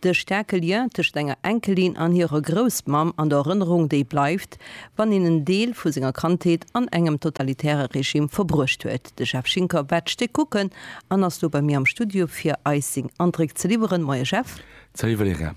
De staarke Lien tëscht senger Enkelin an hirer Groussmamm an der Erënnerung, déi bleift, wann een en Deel vu senger Kandheet an engem totalitäre Regime verbruecht huet. De Jeff Schinker waert d'Stéck kucken an ass lo bei mir am Studio fir eis seng Andréck ze liwweren. Moie Jeff. Salut Valerija.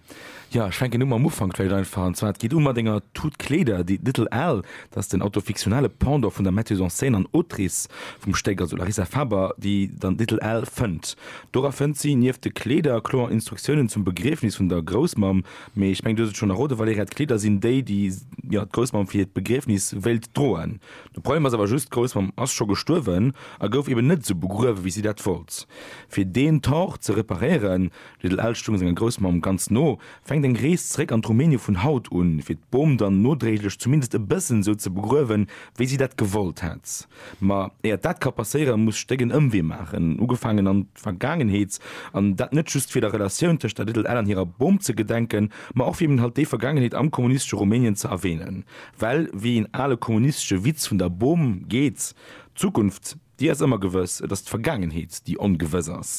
Jo, ech fänken u mam Ufank vläicht einfach, an zwar et geet u mat enger Tut Kleeder, déi Little Al, dass den autofiktionale Pendant vun der Metteuse en scène an Autrice vum Stéck, also Larissa Faber, déi dann d'Titel L fënnt. Dora fënnt si nieft de Kleeder kloer Instruktiounen zum Begriefnis vun der Groussmamm, mee ech mengen, du hues et schonn erroden, Valerija, d'Kleeder sinn déi, déi, jo, d'Groussmamm fir hiert Begriefnis wéilt droen. De Problem ass awer just, d'Groussmamm ass scho gestuerwen a gouf eben net esou begruewen, wéi si dat wollt. Fir deen Tort ze reparéieren, d'Titel L stoung senger Groussmamm ganz no, Fänkt eng Rees zréck an d'Rumänien vun haut un, fir d'Bom dann nodréiglech zumindest e bëssen esou ze begruewen, wéi si dat gewollt hätt? Ma éiert dat ka passéieren, muss Stéck en Ëmwee maachen, ugefaangen an d'Vergaangenheet, an dat net just fir der Relatioun tëscht der Little Ellen an hirer Bom ze gedenken, ma och fir eben halt déi Vergaangenheet am kommunistesche Rumänien ze erwänen. Well, wéi een ale kommunistesche Witz vun der Bom geet, d'Zukunft. Déi ass ëmmer gewëss. Et ass d'Vergaangenheet, déi ongewëss ass.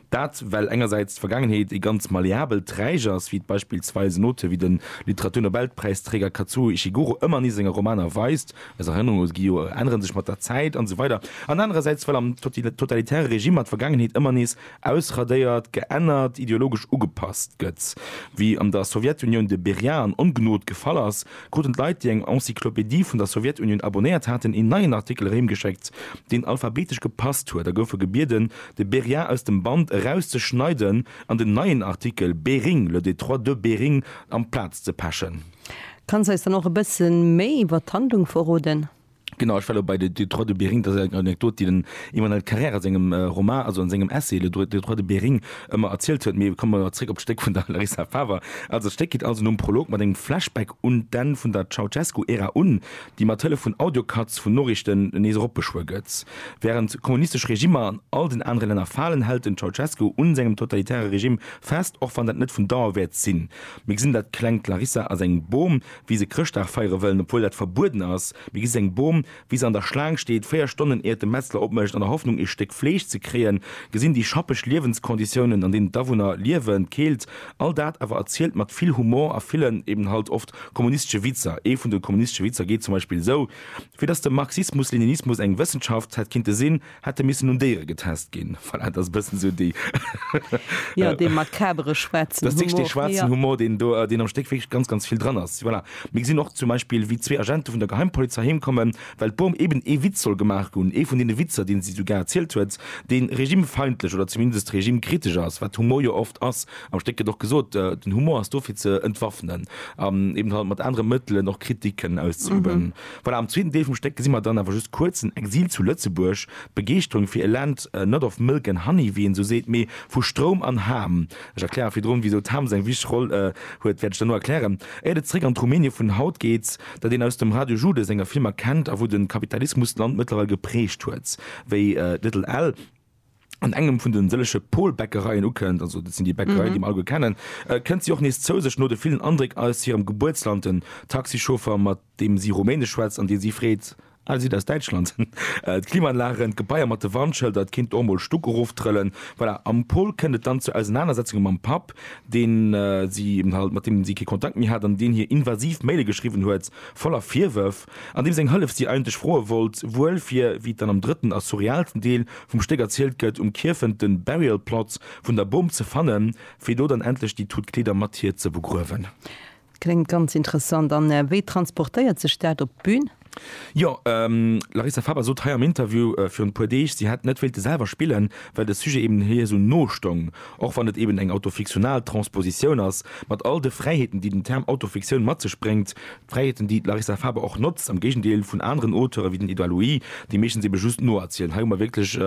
Dat, well engersäits d'Vergaangenheet ee ganz malleabelt Träg ass, wéi et beispillsweis en Auteur wéi de Literaturnobelpräisträger Kazuo Ishiguro ëmmer nees a senge Romaner weist, eis Erënnerunge gi jo, änneren sech mat der Zäit an esou weider an anerersäits, well am totalitäre Regimer d'Vergaangenheet ëmmer nees ausradéiert, geännert, ideologesch ugepasst gëtt, wéi an der Sowjetunioun de Beria an Ongnod gefall ass, kruten d'Leit, déi eng Encyclopédie vun der Sowjetunioun abonéiert haten, een neien Artikel erëmgeschéckt, deen alphabetesch gepasst huet, a goufe gebieden, de Berrien aus dem Band erauszeschneiden an den neien Artikel Bering, Le Détroit de Bering amplaz ze pechen. Kanns eis dann och e bësse méi iwwert d'Handlung verroden? Genau, ech war elo bei de Détroit de Bering, dat ass eng Anekdot, déi den Emmanuel Carrère a sengem Roman, also a sengem Essai Le Détroit de Bering ëmmer erzielt huet. Mee komme mer zréck op d'Stéck vun der Larissa Faver. Also d'Stéck geet also nom Prolog mat engem Flashback un d'Enn vun der Ceausescu-Ära un, déi mat Hëllef vun Audio-Cuts vun Noriichten nees eropbeschwuer gëtt. Wärend kommunistesch Regimmer an all den anere Länner falen, hält den Ceausescu un sengem totalitäre Regime fest, och wann dat net vun Dauer wäert sinn. Mir gesinn dat klengt Larissa a sengem Bom, wéi se Chrëschtdag feiere wëllen, obwuel dat verbueden ass. Mir gesi seng Bom, wéi se an der Schlaang steet, véier Stonnen iert de Metzler opmécht, an der Hoffnung ee Stéck Fleesch ze kréien, gesinn déi schappeg Liewenskonditiounen, an deenen d'Awunner liewen, d'Keelt, all dat awer erzielt mat vill Humor a villen, eben halt oft, kommunistesche Witzer. Ee vun de kommunistesche Witzer geet zum Beispill esou, Fir dass de Marxismus-Leninismus eng Wëssenschaft hätt kinnte sinn, Hätte missen un Déiere getest ginn. Voilà, et ass e bëssen esou déi. Jo, dee makabere schwaarzen Humor. Dat ass wierklech dee schwaarzen Humor, deen do, deen am Stéck wierklech ganz, ganz vill dran ass. Voilà. Mir gesinn och zum Beispill, wéi zwee Agente vun der Geheimpolizei heem kommen, well d'Bom eben ee Witz soll gemaach hunn, ee vun deene Witzer, dee si sougar erzielt huet, dee regimefeindlech oder zumindest regimkritesch ass, wat Humor jo oft ass. Am Stéck gëtt och gesot, den Humor ass do fir ze entwaffnen an eben halt mat anere Mëttelen och Kritik kënnen auszeüben. Voilà, am zweeten Deel vum Stéck gesi mer dann awer just kuerz den Exil zu Lëtzebuerg, d'Begeeschterung fir e Land net of milk and honey, wéi een esou seet, mee vu Stroum an Ham. Ech erklären virdrun, wisou d'Ham seng wichteg Roll huet, wäert ech dann elo erklären, éiert et zeréck an d'Rumänie vun haut geet, dat een aus dem Radio Jude senger Filmer kennt a wou de Kapitalismus d'Land mëttlerweil geprägt huet wéi Little Al. an engem vun den sëllege Pol-Bäckereien ukënnt, also dat sinn déi Bäckereien, déi mer alleguer kennen, kënnt si och nees zou sech, no de villen Andréck aus hirem Gebuertsland, den Taxichauffer, mat deem si Rumänesch schwätzt an dee si freet, Ah, Dir sidd aus Däitschland? D'Klimaanlagen, d'Gebaier mat de Warnschëlder, et kéint och emol Stuck eroftrëllen. Voilà, am Pol kënnt et dann zu Ausenanersetzunge mam Papp, deen si, mat deem si kee Kontakt méi hat an deen hir invasiv Maile geschriwwen huet, voller Virwërf. an deem seng Hëllef si eigentlech froe wollt, wuel fir, wéi et dann am drëtten a surrealsten Deel vum Stéck erzielt gëtt, um Kierfent de Burial Plot vun der Bom ze fannen, fir do dann endlech déi tout Kleeder mat hir ze begruewen. Kléngt ganz interessant. An wéi transportéiert sech dat op d'Bün? Jo, d'Larissa Faber sot hei am Interview virun e puer Deeg, si hätt net wéilte selwer spillen, well de Sujet eben hir esou no stoung, och wann et eben eng autofiktional Transpositioun ass, mat all de Fräiheeten, déi den Term Autofiktioun mat sech bréngt, Fräiheeten, déi d'Larissa Faber och notzt, am Géigendeel vun aneren Auteure wéi den Edouard Louis, déi meeschtens ebe just noerzielen. Hei hu mer wierklech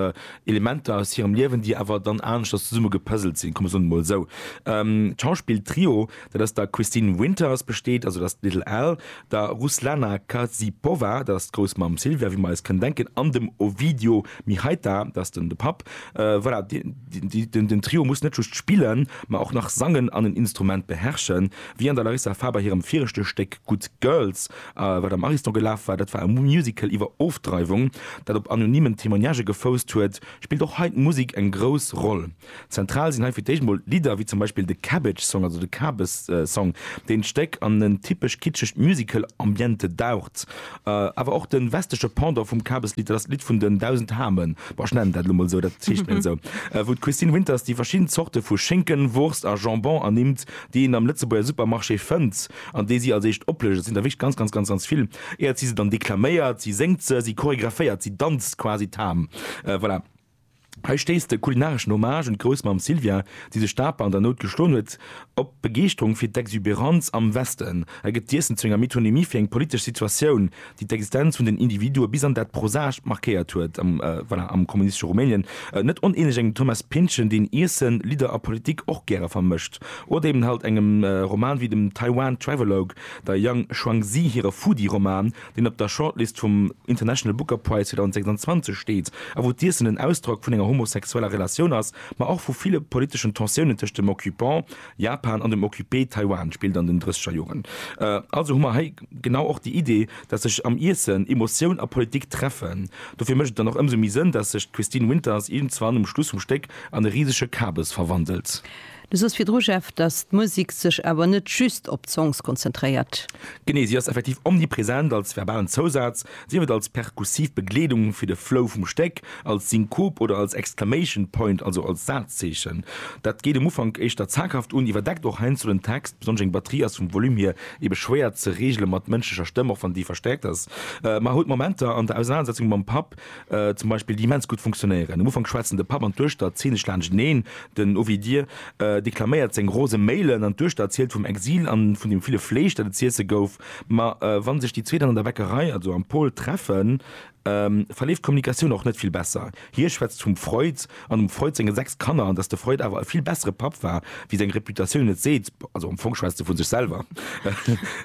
Elementer aus hirem Liewen, déi awer dann aneschters zesumme gepëselt sinn, komm, ech soen et emol esou. D'Schauspill-Trio, dat aus der Christine Winters besteet, also dat ass d'Little Al, der Ruslana Karsipova, dat ass d'Groussmamm Silvia, wéi mer eis kënnen denken, an dem Ovidio Mihaita, dat ass den de Papp, voilà, dee. Den Trio muss net just spillen, ma och nach sangen an en Instrument beherrschen, wéi an der Larissa Faber hirem viregte Stéck Good Girls, wat am Ariston gelaf war. Dat war e Musical iwwer Ofdreiwung, dat op anonymen Témoignagen gefousst huet. Spillt och hei d'Musek eng grouss Roll? Zentral sinn hei fir d'éischt emol Lidder, wéi zum Beispill de Cabbage Song, also de Kabes Song, deen d'Stéck an en typesch kitschegt Musical-Ambiente daucht. Awer och den westleche Pendant vum Kabeslied, dat ass d'Lidd vun den dausend Hamen, bon ech nennen dat elo mol sou, dat heescht net esou, wou d'Christine Winters déi verschidden Zorte vu Schinken, Wurst a Jambon ernimmt, déi een am Lëtzebuerger Supermarché fënnt an déi si als éischt oplécht. Et sinn der wierklech ganz, ganz, ganz, ganz vill. Äert si se dann deklaméiert, si séngt se, si choregraphéiert, si danzt quasi d'Ham. Voilà. Hei stéisst de kulinareschen Hommage un d'Groussmamm Sylvia, déi sech d'Aper an der Nout geschloen huet, op Begeeschterung fir d'Exubérance am Westen. Hei gëtt d'Iessen zu enger Metonymie fir eng politesch Situatioun, déi d'Existenz vun den Individue bis an dat Prosaischt markéiert huet, voilà, am kommunistesche Rumänien. Net onähnlech engem Thomas Pynchon, deen Iessen, Lidder a Politik och gäre vermëscht. Oder eben halt engem Roman wéi dem Taiwan Travelogue, der Yang Shuangzi hire Foodie-Roman, deen op der Shortlist vum International Booker Prize 2026 steet, a wou d'Iessen en Ausdrock vun enger homosexueller Relatioun ass, ma och vu ville politeschen Tensiounen tëscht dem Occupant, Japan, an dem Occupé, Taiwan, spillt an den drësseger Joren. Also hu mer hei genau och déi Idee, datt sech am Iessen Emotioun a Politik treffen. Dofir mécht et dann och ëmsou méi Sënn, datt sech d'Christine Winters iergendzwann um Schluss vum Stéck an e risege Kabes verwandelt. Du soos virdru, Jeff, datt d'Musek sech awer net just op d'Songs konzentréiert. Genee, si ass effektiv omnipresent, als verbalen Zousaz, sief et als perkussiv Begleedung fir de Flow vum Stéck, als Synkop oder als Exclamation Point, also als Sazzeechen. Dat geet um Ufank éischter zaghaft un, iwwerdeckt och heiansdo den Text, besonnesch eng Batterie ass vum Volume hier ebe schwéier ze reegele mat mënschlecher Stëmm, och wann déi verstäerkt ass. Mar huet Momenter an der Ausenanersetzung mam Papp, zum Beispill, déi immens gutt funktionéieren. Um Ufank schwätzen de Papp an d'Duechter zynesch laanschteneen, den Ovidië deklaméiert seng rose Méilen an d'Duechter erzielt vum Exil a vun dem ville Fleesch, dat et z'iesse gouf. Ma wa sech déi zwee dann an der Bäckerei, also am Pôle, treffen, verleeft d'Kommunikatioun och net vill besser. Hie schwätzt vum Freud an dem Freud senge sechs Kanner an dass de Freud awer e vill bessere Papp war, wéi seng Reputatioun et seet. Also am Fong schwätzt e vu sech selwer.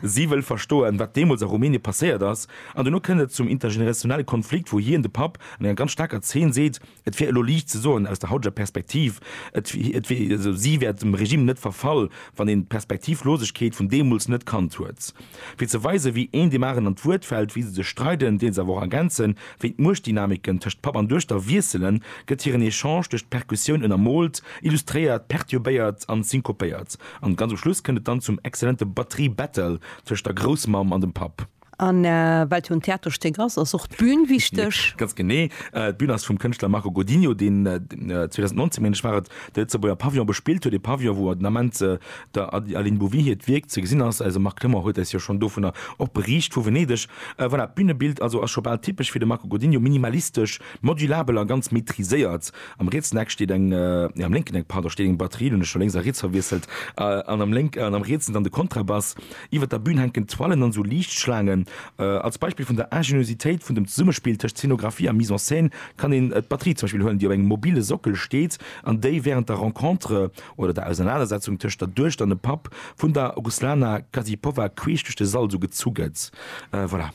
Si wëll verstoen, wat deemools a Rumänie passéiert ass. An duerno kënnt et zum intergenerationelle Konflikt, wou hien, de Papp, an enger ganz staarker Zeen seet, et wär elo liicht ze soen, aus der hauteger Perspektiv, et, et wier, also si wär dem Regime net verfall, wann een d'Perspektivlosegkeet vun deemools net kannt huet. Fir ze weisen, wéi een deem aren an d'Wuert fält, wéi se sech streiden, deen se awer och ergänzen, wéi d'Muechtdynamiken tëscht Papp an Duechter wiesselen, gëtt hiren Echange duerch d'Perkussioun ënnermoolt, illustréiert, perturbéiert an synkopéiert. An ganz um Schluss kënnt et dann zum exzellente Batterie-Battle tëscht der Groussmamm an dem Papp. A well et jo en Theaterstéck ass, ass och d'Bün wichteg. Ganz genee. D'Bün ass vum Kënschtler Marco Godinho, deen 2019, meng ech war et, de Lëtzebuerger Pavillon bespillt huet, e Pavillon, wou den Ament der Aline Bouvy hiert Wierk ze gesinn ass. Eise Marc Clement huet eis jo schonn dovunner och beriicht, vu Venedeg. Voilà, d'Bünebild also ass scho bal typesch fir de Marco Godinho, minimalistesch, modulabel a ganz maîtriséiert. Am rietsen Eck steet eng, nee, am lénken Eck, pardon, steet eng Batterie, elo hunn ech scho lénks a riets verwiesselt, an am rietsen dann de Kontrabass. Iwwer der Bün hänken Toilen an esou Liichtschlaangen. Als Beispill vun der Ingeniositéit vun dem Zesummespill tëscht Zeenografie a Mise en scène kann een d'Batterie zum Beispill huelen, déi op engem mobile Sockel steet an déi wärend der Rencontre oder der Ausernanersetzung tëscht der Duecht an dem Papp vun der Ruslana Kazipowa queesch duerch de Sall esou gezu gëtt. Voilà.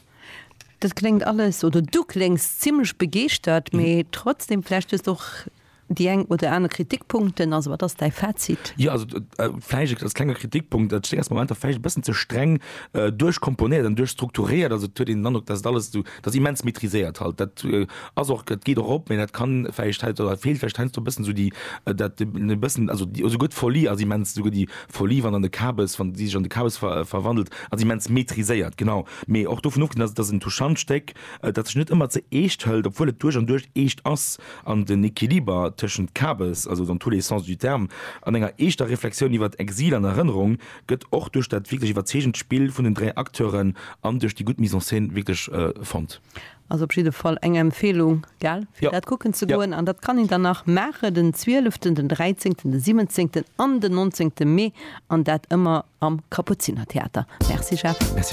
Dat kléngt alles, oder du kléngs zimlech begeeschtert, mee trotzdem, vläicht hues de och Déi eng oder aner Kritikpunkten, also wat ass däi Fazit? Jo, also vläicht als klenge Kritikpunkt, et stéing als Momenter vläicht e bëssen ze streng duerchkomponéiert an duerchstrukturéiert. Also et huet een den Androck, datt et alles esou, datt et immens maîtriséiert halt. Dat ass och, dat geet och op, mä dat kann vläicht hei oder feelt vläicht heiansdo e bëssen esou déi, dat e bëssen, also déi, esouguer d'Folie ass immens, esouguer déi Folie, wann an de Kabes, wann déi sech an de Kabes verwandelt, ass immens maîtriséiert, genau. Mee och dovun ofgesinn, datt et ass en touchant Stéck, dat sech net ëmmer ze eescht hëlt, obwuel et duerch an duerch eescht ass. an den Equiliber tëschent Kabes, also dans tous les sens du terme, an enger eeschter Reflexioun iwwert Exil an Erënnerung gëtt och duerch dat wierklech iwwerzeegend Spill vun den dräi Acteuren an duerch déi gutt Mise en scène wierklech fonnt. Ass op jidde Fall eng Empfehlung, gell, fir dat kucken ze goen. An dat kann een dann nach maachen den Zwieleften, den Dräizéngten, den Siwwenzéngten an den Nonzéngte Mee, an dat ëmmer am Kapuzinertheater. Merci Jeff.